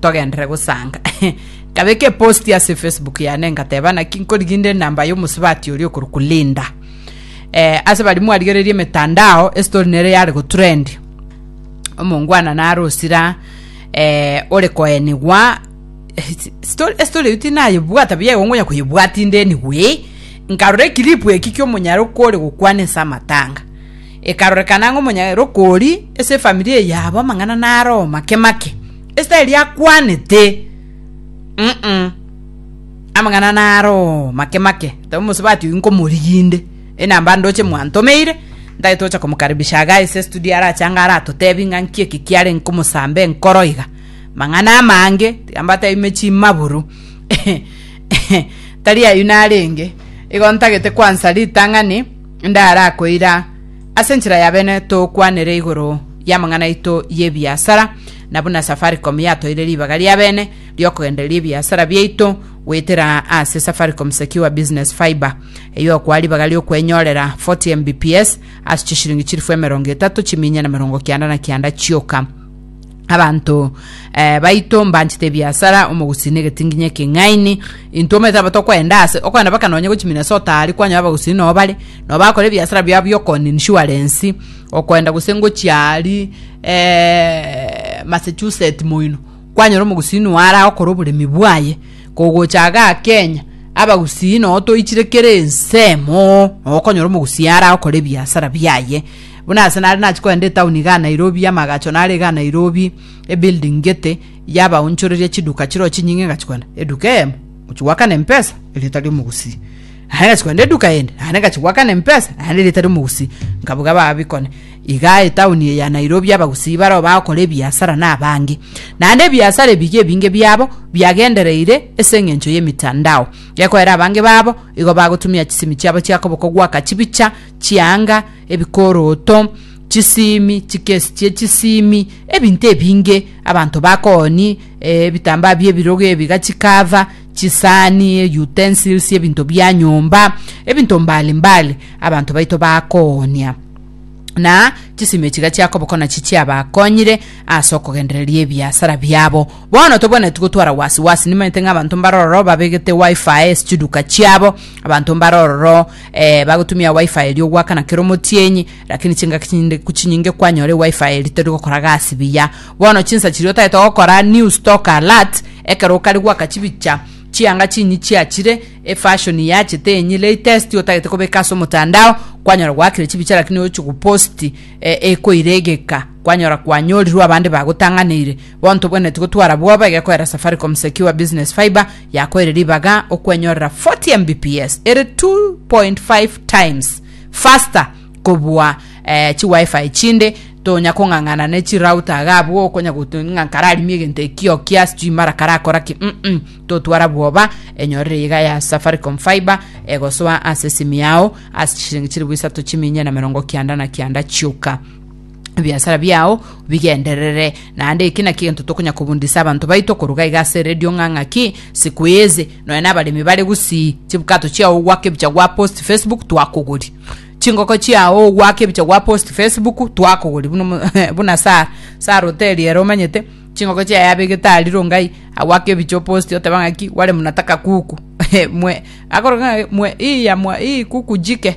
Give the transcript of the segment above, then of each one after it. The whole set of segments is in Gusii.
togenderere gosanga nkabeka eposti ase facebook yane ngateba naki nkorigia inde enamba y'omosubati oria okorokwa linda eh, ase bari mwarigereria emetandao esitori nere yare gotrend omongwana nare osira eh, ore koenigwa Story- esitori eyo tinayebwata buya igo ngonya koyebwata inde anyway nkarora ekilipu eki kiomonyaroko ore gokwana ase amatanga ekarorekana ng'a omonyaroko ori ase efamiri eyabo amang'ana nare omake make Esiteri akwanete mm amang'ana naro make make tabo mosubati oyu nkomoriginde enamba ndoche mwantomeire ntagete gocha komokaribisha aga ase studio arache anga aratotebi ng'a nki eki kiare nkomosambe nkoro iga mang'ana amange tiga mbatebe ime chimaburu tari ayio narenge igo ntagete kwansa ritang'ani ndara koira Ase enchera y'abene tokwanere igoro y'amang'ana aito y'ebiasara, na buna Safaricom yatoire ribaga ri'abene ri'okogendereria ebiasara biaito goetera ase Safaricom Secure Business Fibre, eyio okoa ribaga ri'okwenyorera 40 Mbps ase chishiringi chilifu emerongo etato chiminyene merongo kianda na kianda chioka. abanto eh, baito mbanchete ebiasara omogusii na egetingi nginya ekeng'aini intwe omanyete aba tokwenda ase okwenda baka nonye gochi minnesota ari kwanya abagusii noo bare noo bakora ebiasara biabo biokoni insurance okwenda gose ngochi ari eh, massachusetts moino kwanyora omogusii noo ara okora oboremi bwaye kogocha aga kenya abagusii noo toichire kera ensemo noo okonyora omogusii ara okora ebiasara biaye Buna ase nare nachia kogenda etaoni igaa Nairobi y'amagacho nare igaa Nairobi ebuilding gete yabaonchoreria chiduka chiroo chinyinge ngachia kogenda eduka eyemo gochia goakana empesa erieta ri'omogusii nare ngachia kogenda eduka eyende naende ngachia goakana empesa naende erieta ri'omogusii nkabuga babikone igaa etaoni eye ya Nairobi abagusii baroo bagokora ebiasara na abange naende ebiasara ebi iga ebinge biabo biagendereire ase eng'encho y'emitandao gekoera abange babo igo bagotumia chisimi chiabo chiakoboko goaka chibicha chianga ebikoroto, chisiimi, chikesi chie chisiimi, ebinto ebinge, abanto bakooni, eh, ebitambaa bi'ebirogo ebi gachikava, chisani, eh, utensils, ebinto bia nyomba, ebinto mbali mbali abanto baito bakoonia na chisimi echi gachiakoboka nachi chiabakonyire ase okogendereria ebiasara biabo bono tobwenereti gotwara wasi wasi nimanyete ng'a abanto mbare ororo babegete wifi chiduka chiabo abanto mbare ororo Eh, bagotumia wifi erio gwakana kera omotienyi, lakini chingaki chinde kuchinyinge kwanyora wifi eri tori gokora gasi biya. Bono chinsa chiria otagete gokora new stock alert ekero okare gwaka chibicha chianga chinyi chiachire, e fashion yachete enyi latest otagete kobeka ase omotandao, kwanyora gwakire chibicha lakini ochi go post eh, ekoire egeka kwanyora kwanyorirwe abande bagotang'aneire. Bono tobwenereti gotwara bwoba iga ekoera Safaricom Secure Business Fibre yakoire ribaga okwenyorera 40 Mbps, ere 2.5 times faster kobua eh, chi wifi chinde tonya kong'ang'ana ne chi router iga abwo okonya gotu- ng'a kararimie egento ekio kia sijui mara karakora ki mm -mm. totwara bwoba enyorere iga ya safaricom fiber egosoa ase esimi yao ase chishiringi chilifu isato chiminye na merongo kianda na kianda chioka ebiasara biao bigenderere, naende eki nakio gento tokonya kobundisa abanto baito koruga iga ase eredio ng'a ng'aki siku eze nonya nabaremi bare gusii chibkato chiao ogwaka ebicha gwa post Facebook twakogori chingoko chiao ogwaka ebicha gwa post Facebook twakogori buna omo- buna Sa- Sara oteri ere omanyete chingoko chiaye abegete aria rongai agwaka ebicha oposti oteba ng'aki wale mnataka kuku mwe akoroka ng'a mwe iya mwa ii kuku jike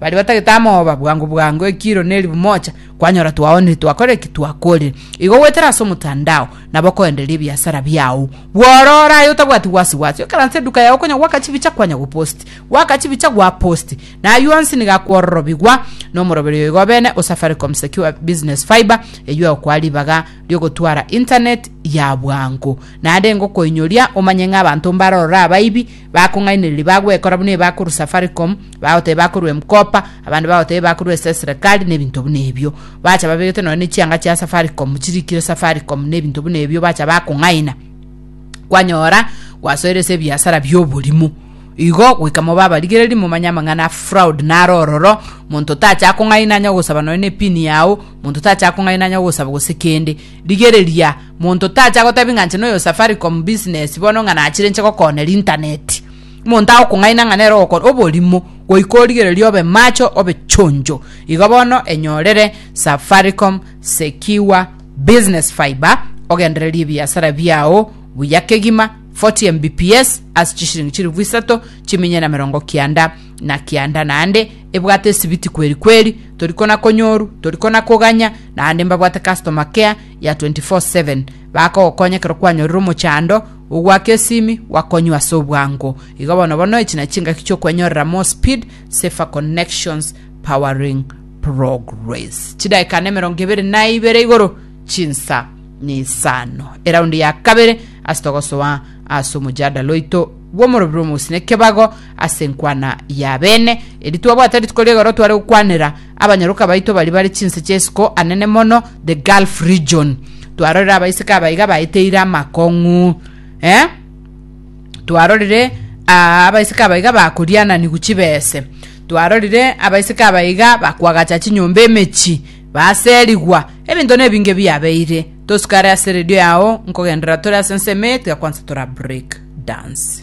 Baria batagete amoba, bwango bwango ekiro ne eribu mocha, kwanyora twaonire twakora eki twakorire. Igo goetera ase omotandao, nabo koendereria ebiasara biao. Bwororo aye otabwati wasi wasi, okaranse eduka yao konya goaka chibicha kwanya gopost. Goaka chibicha gwa post. Na aywo onsi nigo akwororobigwa nomoroberi oyo igobene o Safaricom Secure Business Fibre eywo egokoa ribaga riogotwara internet ya bwango. Naende engokoinyoria omanye ng'a abanto mbarorore abaibi, Bakong'ainereria bagwekora buna ebi bakorwa Safaricom, bagoteba bakorwa M-Kopa, abande bagoteba ebi bakorwa ase eserekari, na ebinto buna ebio. Bacha babegete nonya ne chianga chia Safaricom, chirikire Safaricom, na ebinto buna ebio, bacha bakong'aina. Kwanyora gwasoire ase ebiasara bi'oborimo. Igo goika mobe abarigereri, momanye amang'ana a fraud naro ororo, monto tacha akong'aina anya gosaba nonya ne pin yao, monto tacha akong'aina anya gosaba gose kende. Rigereria. Monto tacha gotebia ng'a inche noyo Safaricom business bono ng'a nachire inche gokooner internet. Monto agokong'aina ng'a nere ogokora oborimo goika origererie obe macho obe chonjo. Igo bono enyorere Safaricom Secure Business Fibre ogendererie ebiasara biao buya kegima 40 Mbps ase chishiringi chilifu isato chiminyene na merongo kianda na kianda naende ebwate esibiti kweri kweri torikona konyoru torikona koganya naende mbabwate customer care ya 24/7, bakogokonya ekero kwanyorire omochando ogwaka esimi gwakonywa ase obwango. Igo bono bono echi na chingaki chi'okwenyorera More Speed, Safer Connections, Powering Progress. Chidaeka na emerongo ebere na ibere igoro chinsa na isano. Eraundi ya kabere ase togosoa ase omojadala oito bw'omorobio bw'omogusii na ekebago ase enkwana y'abene. Eri twabwate rituko rigoro tware gokwanera Abanyaroka baito baria bare chinse chi'esiko anene mono, the Gulf region. Twarorire abaiseke abaiga baeteire amakong'u. Eh? Twarorire ah, abaiseke abaiga bakoriananigu chibese. Twarorire abaiseke abaiga bakwagacha chinyomba emechi, baserigwa. Ebinto nebinge biabeire. Tosikare ase redio yao nkogendera tore ase ensemo eye tiga kwansa tora break dance.